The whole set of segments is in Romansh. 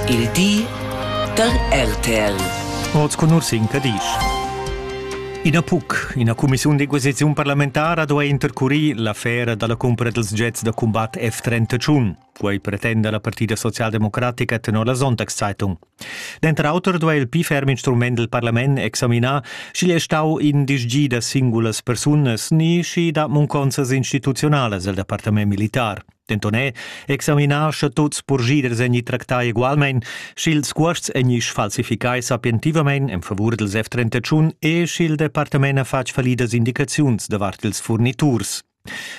Il di da RTL. Oz con Ursin Cadisch. Ina PUC, ina cumissiun de coesiziun parlamentara, doa intercurir l'affera dalla cumpra dels jets da combat F-31. Quei pretenda la Partida Socialdemocratica tenor la Sonntagszeitung. Denter auter doa il pli ferm instrument del Parlament examinar, sch'igl è stau in disgi da singulas persunas ni schi da munconsas instituzionales el departament militar. denton è examinar sche tuts purschiders egni tractai egualmein, sch'ils cuosts egni sfalsificai sapientivamein en favur dils F-31 e sch'il departament ha fatg fallidas indicaziuns davart ils furniturs.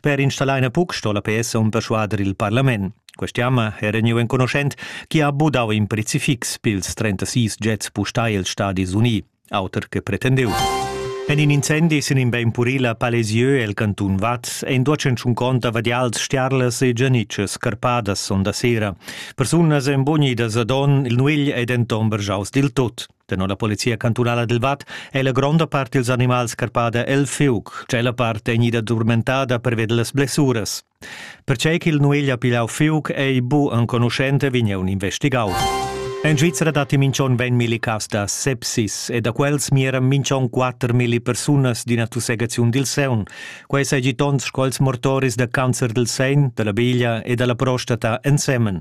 Per installar in puc sto la PS on persuader il parlament. Quest'jamma era gneu enconuschent chi ha budau in prezifix pils 36 jets pustai els Stadis Unii. auter che pretendeu. En in incendi sin in bein puril a Palesieu el cantun Vaz ein duacenschun conta vadials stiarlas e gianitschas scarpadas sonda sera. Persunas ein bonidas a don, il nuegl ei denton bergiaus dil tot. Tenor la polizia cantunala del Vat è la gronda parte dels animals scarpada el fiuc, cella parte gnida durmentada per ved las blessuras. Pertgei ch'il Nueglia pigliau fiug ei bu enconuschent, vegn eu investigau. En Svizzera datti minch'on 20 milli cas da sepsis e da quels mieran minch'on 4 milli persunas d'ina tussegaziun dil sein. Quei seigi tons sco els mortoris da cancer del sein, della biglia e della prostata ensemen.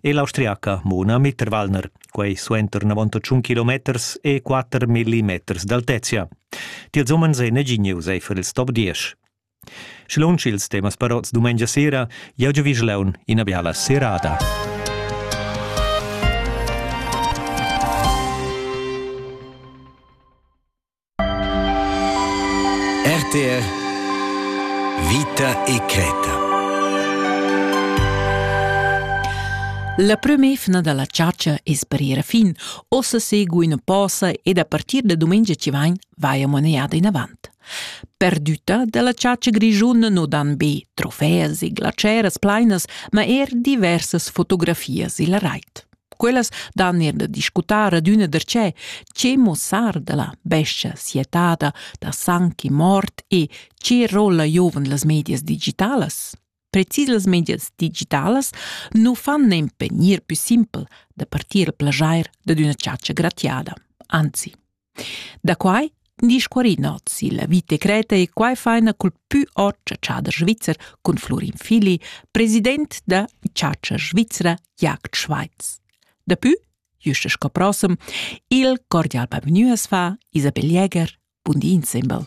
e l'austriaca Mona Mitterwallner, quei suenter 91 kilometers e 4 millimeters d'altezia. Tiels umens ei neginius eifer il stop 10. Schlunsch ils temas parots dumengia sera, jau giavischlaun ina biala serada. RTR Vita e creta. La prem'efna dalla chatscha es parira fin. Ossa seguin posa ed a partir da domenica ci vain vaia moneada in avant. Perdüta dalla chatscha grischuna no dan be trofeas e glaceras plainas, ma er diversas fotografias illa rait. Quellas dan er da discutar adüna darcheu che muossar da la bescha sietada, da sang e mort e che rolla giovan las medias digitalas. Precis las medias digitalas nu fan nempe gnir pü simpel da partir a plajair dad üna chatscha gratiada. Anzi, Da quai discuorinots illa vita creta e quai faina cul pü ot chatschader svizzer cun Flurin Fili, president da chatscha svizra Jagd Schweiz. Dapü, juste sco prossem, il cordial bavgnü as fa Isabel Jäger, bun di insembel.